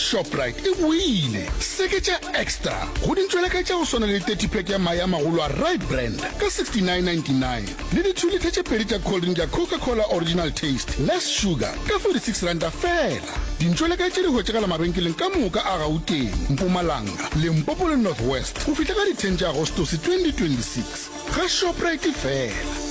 Shoprite e boile seketša extra go dintšweleka tša go swana le 30 pack ya mae a magolo a Rite Brand ka 69.99 le dithulitha tše pedi tša cold drink ya Coca Cola Original Taste Less Sugar ka 46 ranta fela. Dintšweleka tše di hwetšagala mabenkeleng ka moka a Gauteng, Mpumalanga, Limpopo le North West go fihla ka di 10 tša Agostose 2026. Ga Shoprite fela.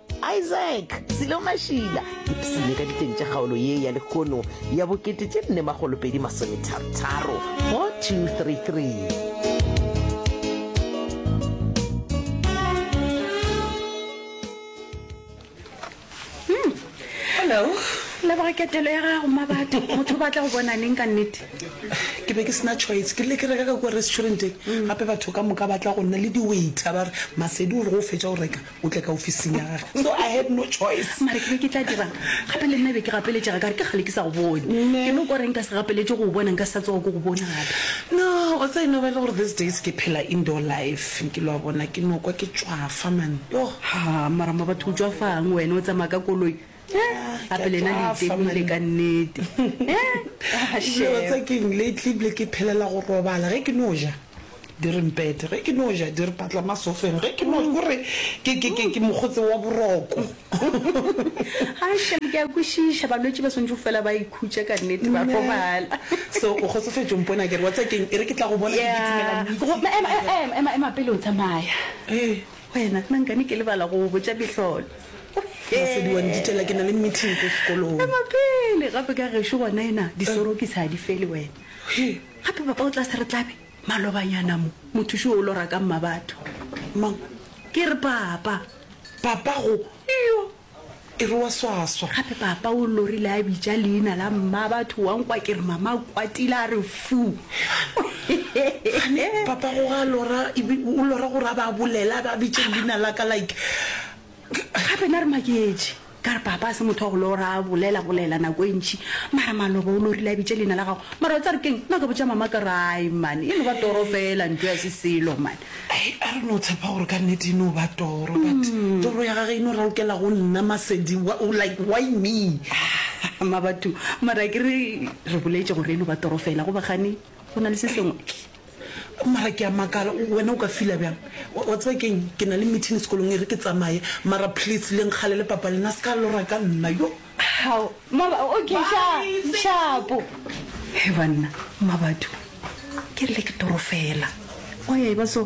Isaac Selo Mašila ipsene ka diteng tša kgaolo ye ya lekhono ya bokete tše nne magolopedi masometharotharo 4233. Hello. leboga ketelo ya gago mabatho motho o batla go bona neng ka nnete ke be ke sena choice ke rile ke reka ka kua restauranteng gape batho ka moka ba tla go nna le di-waiter ba re masedi o re go fetsa o reka o tle ka ofising ya gage so i had no choice mare ke be ke tla dirang gape le nna be ke gapeletšega ka re ke gale ke sa go bone ke no ko reng ka se gapeletše go o bona nka sa tsoga ko go bona gape no o tsa eno bele gore these days ke phela indoor life nke lo a bona ke no kwa ke tšwafa man yo ha mara mabatho o tšwafang wena o tsamaya ka koloi gape lena le itemile ka nnete dilo tse keng lately bile ke phelela go robala ge ke no ja di re mpete ge ke no ja di re patla masofeng ge ke no gore ke ke ke ke mokgotse wa boroko ga shem ke a kwešiša balwetši ba swantšwe fela ba ikhutša ka nnete ba robala so o kgotsofetšo mpona kere wa tsa keng e re ke tla go bona ke ditsimela ema ema ema pele o tsamaya ee Wena, na nkane ke lebala go go botša mehlolo? Masedi wa ntitela, ke na le meeting ko sekolong. Ema pele, gape ka gešo gona ena, disorokisi ga di fele wena. Gape papa o tla se re tlabe malobanyana mo, mothuši wo o lora ka mmabatho. Mang? Ke re papa. Papa go? Iyo, e re wa swaswa gape papa o lorile a bitša leina la mma batho wa nkwa ke re mama a kwatile a re fu Gane, papa go ga lora ebe o lora gore a ba bolela a ba bitše leina la ka like gape na re maketše ka re papa a se motho wa go lora a bolela bolela nako e ntšhi mara maloba o lorile a bitše leina la gago mara o tsa re keng nna ka botša mama ka rai mane e no ba toro fela nto ya se selo mane I don't know Tshepa gore ka nnete e no ba toro but toro ya gage e no ralokela go nna Masedi like why me? Ahh Mabatu mara akere re boletše gore e no ba toro fela goba gane go na le se sengwe? Mara ke a makala wena o ka fila bjang wa tseba keng ke na le meeting sekolong e re ke tsamaye mara please le nkgalele papa lena se ka lora ka nna yo. Hao, mama, okay, sha, shapo. He banna, Mmabatho, ke re le ke toro fela. Wa ya e ba so.